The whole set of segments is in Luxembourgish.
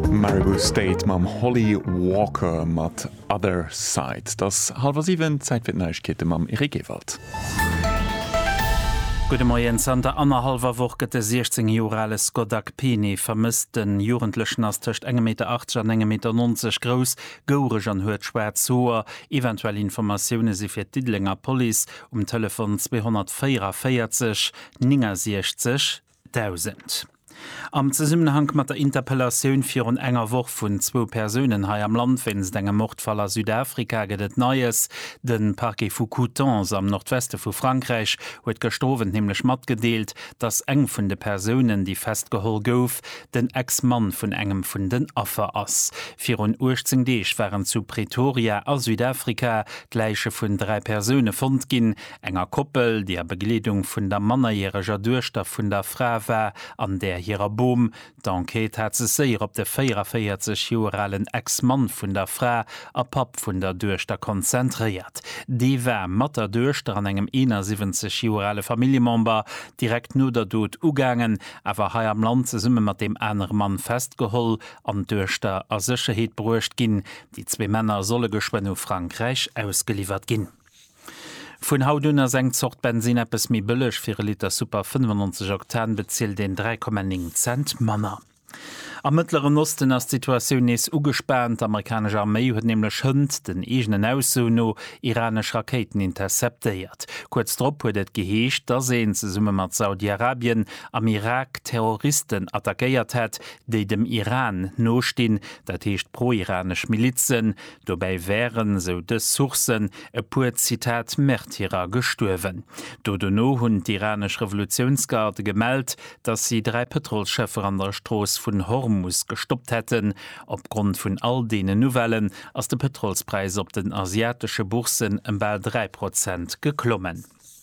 Maribou State mam Holly Walker mat Other Side. Et ass hallwer siwen, Zäit fir d'Neiegkeete mam Eric Ewald. Gudde Moien, Zanter annerhallwer Woch gëtt de 16 Joer ale Scott Akpene vermësst. Den Jugendlechen ass tëscht engem Meter 80 an engem Meter 90 grouss, goureg an huet schwaarz Hoer. Eventuell Informatioune si fir d'Diddelenger Police um Telefon 244 69 1000. Am Zesummenhank mat der Interpellatioun virun enger Woch vun zwou Persounen hei am Land wéinst engem Mordfall a Südafrika gëtt et Neies. De Parquet vu Coutances am Nordweste vu Frankräich huet gëschter Owend nämlech matgedeelt, datt eng vun de Persounen, déi festgeholl gouf, den Ex-Mann vun engem vun den Affer ass. Virun 18 Deeg waren zu Pretoria a Südafrika d'Läiche vun dräi Persoune fonnt ginn. enger Koppel, déi a Begleedung vun der mannerjäreger Duechter vun der Fra war, an där hirer Bom. D'Enquête hat sech séier op de 44 Joer alen Ex-Mann vun der Fra a Papp vun der Duechter konzentréiert. Dee war mat der Duechter an engem 71 Joer ale Familljemember direkt no der Dot ugaangen, awer hei am Land zesumme mat deem anere Mann festgeholl an d'Duechter a Sécherheet bruecht ginn. Déi zwee Männer solle geschwënn u Frankräich ausgeliwwert ginn. Vun haut un ass eng Zort Bensin eppes méi bëlleg, fir e Liter Super 95 Oktan bezilt een 3,9 Cent manner. Am Mëttleren Osten ass d'Situatioun nees ugespaant. D'Amerikanesch Arméi huet nämlech hënt den eegenen Aussoen no iranesch Rakéiten interceptéiert. Kuerz drop huet et geheescht, dass een, zesumme mat Saudi-Arabien, am Irak Terroristen attackéiert hätt, déi dem Iran nostinn, dat heescht pro-iranesch Milizen. Dobäi wären, esou dës Sourcen, e puer Zitat Märtyrer gestuerwen. Do dono hunn d'iranesch Revolutiounsgarde gemellt, datt si dräi Pëtrolsschëffer an der Strooss vun Hormus gestoppt hätten. Opgrond vun all deenen Nouvellen ass de Pëtrolspräis op den asiatesche Bourssen ëm bal dräi Prozent geklommen.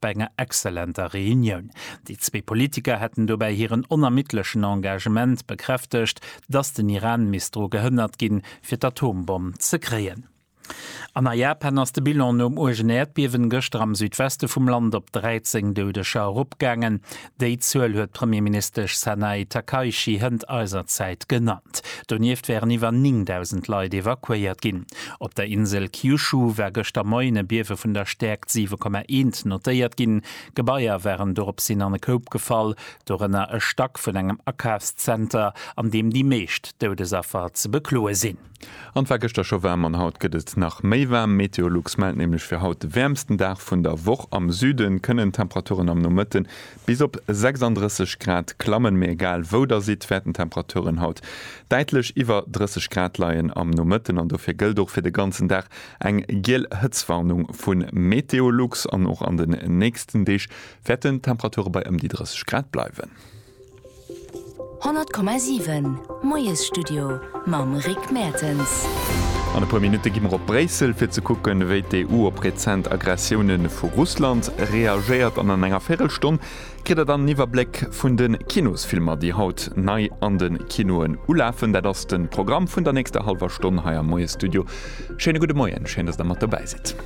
Bei enger exzellenter Reunioun. Déi zwee Politiker hätten dobäi hiren onermiddlechen Engagement bekräftegt, datt den Iran misst dru gehënnert ginn, fir d'Atombomm ze kréien. An a Japan ass de Bilan nom uergen Äerdbiewen gëschter am Südweste vum Land op 13 Doudeger eropgaangen. Déi Zuel huet d'Premierministesch Sanae Takaichi hënt eiser Zäit genannt. Donieft wären iwwer 9.000 Leit evakuéiert ginn. Op der Insel Kyushu war gëschter Moien e Biewe vun der Stäerkt 7,1 notéiert ginn. Gebaier waren doropshin an e Koup gefall, dorënner e Stack vun engem Akafszenter, an deem déi meescht Doudesaffer ze bekloe sinn. An et war gëschter scho waarm an haut gëtt et nach méi waarm. Meteolux mellt nämlech fir haut de wäermsten Dag vun der Woch. Am Süde kënnen d'Temperaturen am Nomëtte bis op 36 Grad klammen, mee egal wou der sidd, wäerten d'Temperaturen haut däitlech iwwer 30 Grad leien am Nomëtten. An dofir gëllt och fir de ganzen Dag eng giel Hëtztwarnung vu Meteolux. An och an den nächsten Deeg wäerten d'Temperature bei ëm déi 30 Grad bleiwen. 100,7 Moiesstudio mam Rick Mertens. An e puer Minutte gi mer op Bréissel, fir ze kucken, wéi d'EU op rezent Aggressioune vu Russland reagéiert. An an enger Véirelstonn kritt der dann en Iwwerbléck vun de Kinosfilmer, déi haut nei an de Kinoen ulafen. Dat ass de Programm vun der nächster hallwer Stonn hei am Moiesstudio. Schéine gudde Moien, schéin, datt Der mat dobäi sidd.